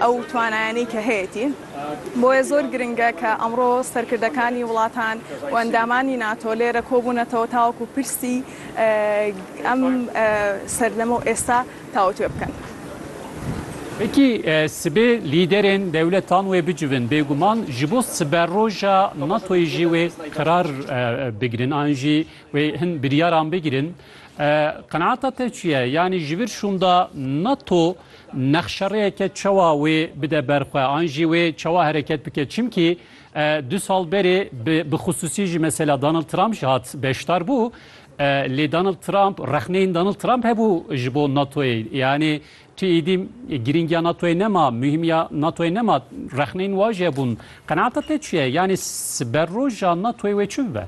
ew twanayanî ke heyetî. Boye zor giring e ke emro serkirdekanî wilatan û endamanî nato lê re kobûnetewe ta wekû pirsî em serdeme û êsta tawetwê bikin. Wekî sibê lîderên dewletan wê bicivin bêguman ji bo siberoja natoyê jî wê qirar bigirin an jî wê hin biryaran bigirin. Qenaata te çi ye? Yanî ji vir şûnda nato Nexşerêyeke çawa wê bide ber xwe an jî wê çawa hereket bike çimkî du sal berê bi xisûsî jî mesela Donald Trump jî hat beşdar bû lê Donald Trump rexneyên Donald Trump hebû ji bo NATOyê yanî tu êdî girîngiya NATOyê nema muhîmiya NATOyê nema rexneyên wajî hebûn qenaata te çi ye yanî siber roja NATOyê wê çi bibe?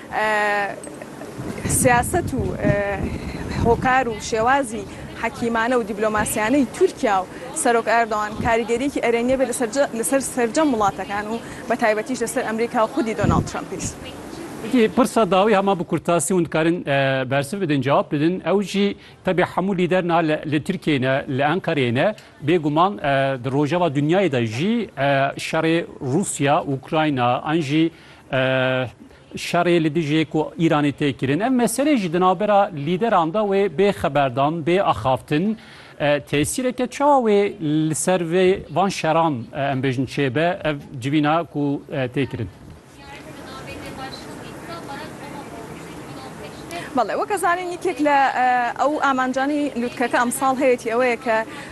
Siyaset û hokar û şêwazî hekîmane û dîplomasiyane yê Tirkiya û Serok Erdogan karîgeriyekî erêngê be li ser sercem welatekan û bi taybetî jî li ser Amerîka û xwedî Donald Trumpî. Wekî pirsa dawî hema bi kurtasî hûn dikarin bersiv bidin, cewab bidin. Ew jî tevî hemû lîder niha li Tirkiyeyê ne, li Enqereyê ne, bêguman di rojeva dinyayê de jî şerê Rûsya, Ukrayna an jî, Şerê li dijî ku Îranê tê kirin, ev meselê jî di navbera lîderan de wê bê xeberdan, bê axaftin. Tesîreke çawa wê li ser vê van şeran em bêjin çêbe ev civîna ku tê kirin? Belê weke zanîn yekek li ew amancanî lûtkeke emsal heye tî ew ye ke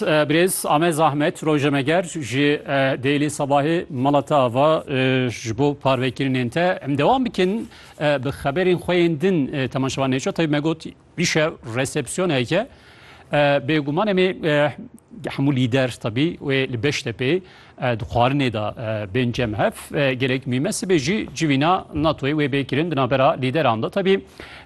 Birêz Amed Zahmet rojnameger ji Daily Sabahê mala te ava ji bo parvekirinên te. Em dewam bikin bi xeberên xwe yên din temaşevan nêço tevî me got îşe resepsiyoneke bêguman em ê hemû lîder tebî wê li Beştepê Di xwarinê de bên cem hev gelek mîme sibê jî civîna NATOyê wê bê kirin di navbera lîderan de. Tevî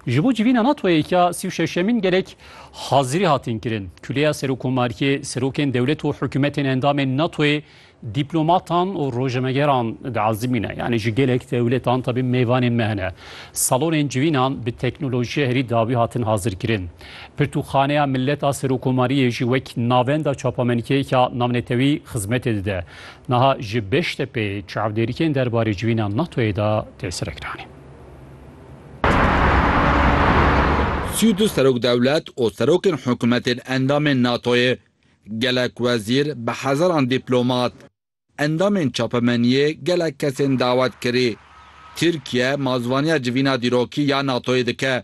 ji bo civîna NATOyê ya sî û şeşemîn gelek hazirî hatin kirin. Kuleya Serokomariyê, serokên dewlet û hikûmetên endamên NATOyê, dîplomatan û rojnamegeran diezimîne. Yanî ji gelek dewletan tevî mêvanên me hene. Salonên civînan bi teknolojiya herî dawî hatin hazirkirin. Pirtûkxaneya Milet a Serokomariyê jî wek navenda çapamenîkeyeke navnetewî xizmetê dide. Niha ji Beştepê çavdêrikên derbarê civîna NATO'yê de tê serekiranîn. Sî û du serokdewlet û serokên hikûmetên endamên NATO'yê, gelek wezîr, bi hezaran dîplomat, endamên çapemeniyê, gelek kesên dawet kirî. Tirkiye mazvaniya civîna dîrokî ya NATO'yê dike.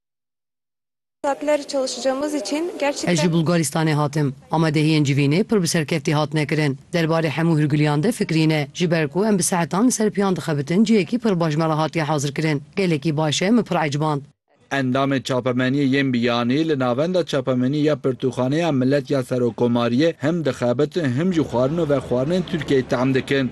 Ez ji Bulgaristanê hatim. Amadehiyên civînê pir bi serkeftî hatine kirin. Derbarê hemû hûrgiliyan de fikirî ne. Ji ber ku em bi saetan li ser piyan dixebitin cihekî pir baş me re hatiye hazirkirin. Gelekî baş e, min pir eciband. Endamê Çapemeniyê yên Biyanî li Navenda Çapemenî ya Pirtûkxaneya Milet ya Serokkomariyê him dixebitin him jî xwarin û vexwarinên Tirkiyeyê tehm dikin.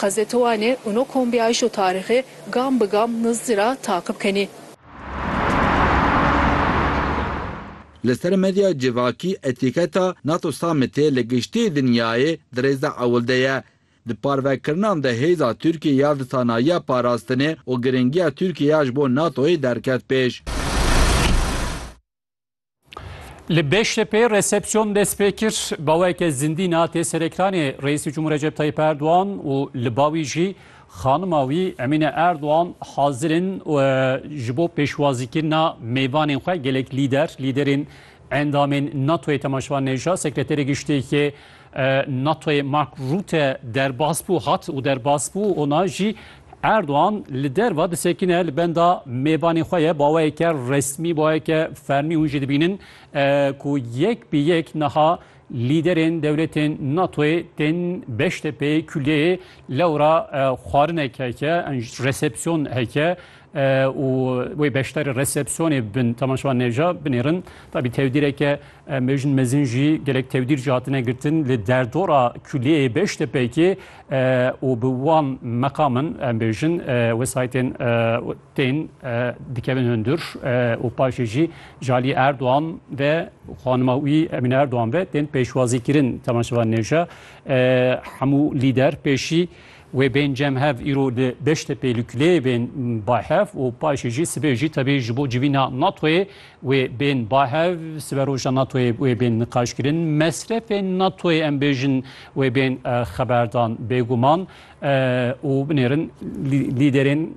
Qasdê to anê û no kombî ayîş û tarîxê gam bi gam nizdî ra taqib kenî. Li ser medya civakî etîketa Nato Summitê li giştî dinyayê di rêza ewil de ye. Di parvekirinan de hêza Tirkiyê ya di sanayiya parastinê û giringiya Tirkiyê ya ji bo Natoyê derket pêş. Li Beştepê resepsiyon dest pê kir baweke zindî na tê serektanê Reîsî Cumhur Recep Tayyip Erdogan û li bawî jî xanima wî Emîne Erdogan hazir in ji bo pêşwazîkirina mêvanên xwe gelek lîder, lîderên endamên NATO'yê temaşevan neja sekreterê giştê yê NATOyê Mark Rutte derbas bû, hat û derbas bû ona jî Erdogan li derva disekine li benda mêvanê xwe ye baweyeke resmî baweyeke fermî hûn jî dibînin ku yek bi yek niha lîderên dewletên NATOyê tên Beştepeyê kuliyeyê lewra xwarinek heke resepsiyon heke û wê beşdarî resepsiyonê bin temaşevan nêja binêrin. Tabî tewdîreke mejin mezin jî gelek tewdîr jî hatine girtin li derdora kuliyeyê Beştepekê û bi wan meqamin em bêjin wesayetên tên dikevin hundir û paşê jî ji alî Erdogan ve xanima wî Emîne Erdogan ve tên pêşwazîkirin temaşevan nêja hemû lîder pêşî Wê bên cemhev îro li Beştepê li kuleyê bên bay hev û paşê jî sibê jî tevî ji bo civîna NATOyê wê bên bay hev. Siberoja NATOyê wê bên niqaşkirin. Mesrefên NATOyê em bêjin wê bên xeberdan bêguman û binêrin lîderên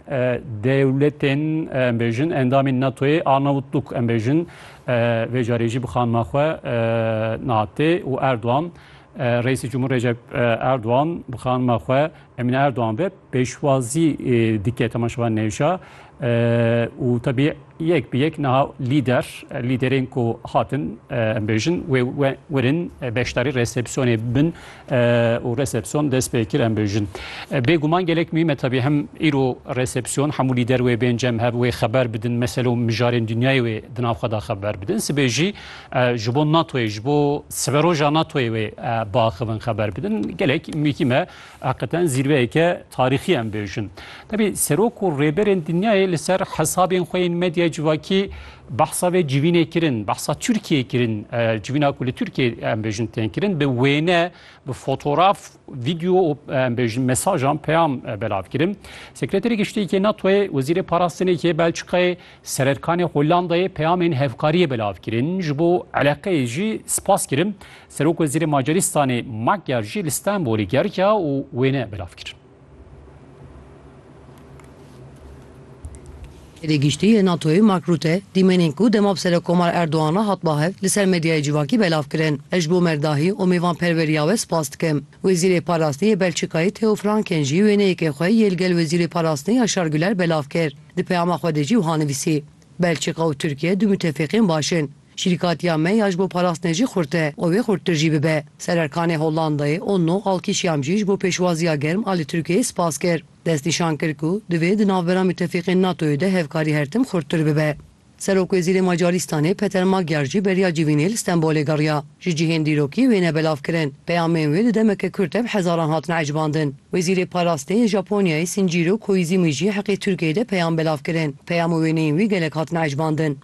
dewletên em bêjin endamên NATOyê Arnavutluk em bêjin vê carê jî bi xanima xwe Naatê û Erdogan Reîsê Cumhur Recep Erdogan bi xanima xwe Emîne Erdogan ve pêşwazî dike tema şeva nêşa û tebî yek bi yek niha lîder lîderên ku hatin em bêjin wê werin beşdarî resepsiyonê bin û resepsiyon dest pê kir em bêjin. Bêguman gelek mîm e tebî hem îro resepsiyon hemû lîder wê bên cem hev wê xeber bidin meselo mijarên dinyayê wê di nav xwe de xeber bidin. Sibê jî Ji bo NATOyê, ji bo siberoja NATOyê wê biaxivin xeber bidin. Gelek mîkî me heqiqeten zîrveyeke tarîxî em bêjin. Tevî serok û rêberên dinyayê li ser hesabên xwe yên medyaya civakî behsa vê civînê kirin, behsa Tirkiyeyê kirin, civîna ku li Tirkiyeyê em bêjin tên kirin, bi wêne, bi fotoraf, vîdeo û em bêjin mesajan, peyam belav kirin. Sekreterê Giştî yê NATOyê, Wezîrê Parastinê yê Belçîkayê Sererkanê Hollandayê peyamên hevkariyê belav kirin, ji bo eleqeyê jî spas kirin. Serokwezîrê Macarîstanê Magyar jî li Stenbolê geriya û wêne belav kir. Hêdî Giştî yê NATOyê Mark Rutte dîmenên ku dema bi Serokomar Erdogan re hat ba hev li ser medyayê civakî belav kirin. Ez ji bo merdahî û mêvanperweriya we spas dikim. Wezîrê Parastî yê Belçîkayê Theo Franken jî wêneyekê xwe yê li gel Wezîrê Parastinê Yaşar Güler belav kir. Di peyama xwe de jî wiha nivîsî, Belçîka û Tirkiye du mutefîqên baş in. Şîrîkatiya me ya ji bo parastinê jî xurt e û wê xurttir jî bibe. Sererkanê Hollandayê Onno Alkîşiam jî ji bo pêşwaziya germ a li Tirkiyeyê spas kir. Destnîşan kir ku divê di navbera mutefîqên NATOyê de hevkarî her tim xurttir bibe. Serokwezîrê Macaristanê Peter Magyar jî beriya civînê li Stenbolê geriya. Ji cihên dîrokî wê ne belav kirin. Peyamên wê di demeke kurt de bi hezaran hatine ecbandin. Wezîrê Parastê yê Japonyayê Shinjîro Koizîmî jî heqê Tirkiyeyê de peyam belav kirin. Peyam û wêneyên wî gelek hatine ecbandin.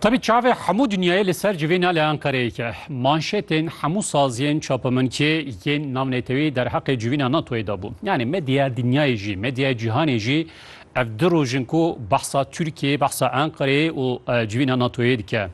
Tabi çavê hemû dinyayê li ser civê nale Ankareyeke. Manşetên hemû saziyên çapeminçê yên navnetewî derheqê civîna NATOyê de bû. Yani medyaya dinyayê jî, medyaya cîhanê jî ev di rojin ku behsa Tirkiyeyê, behsa Ankareyê û civîna NATOyê dike.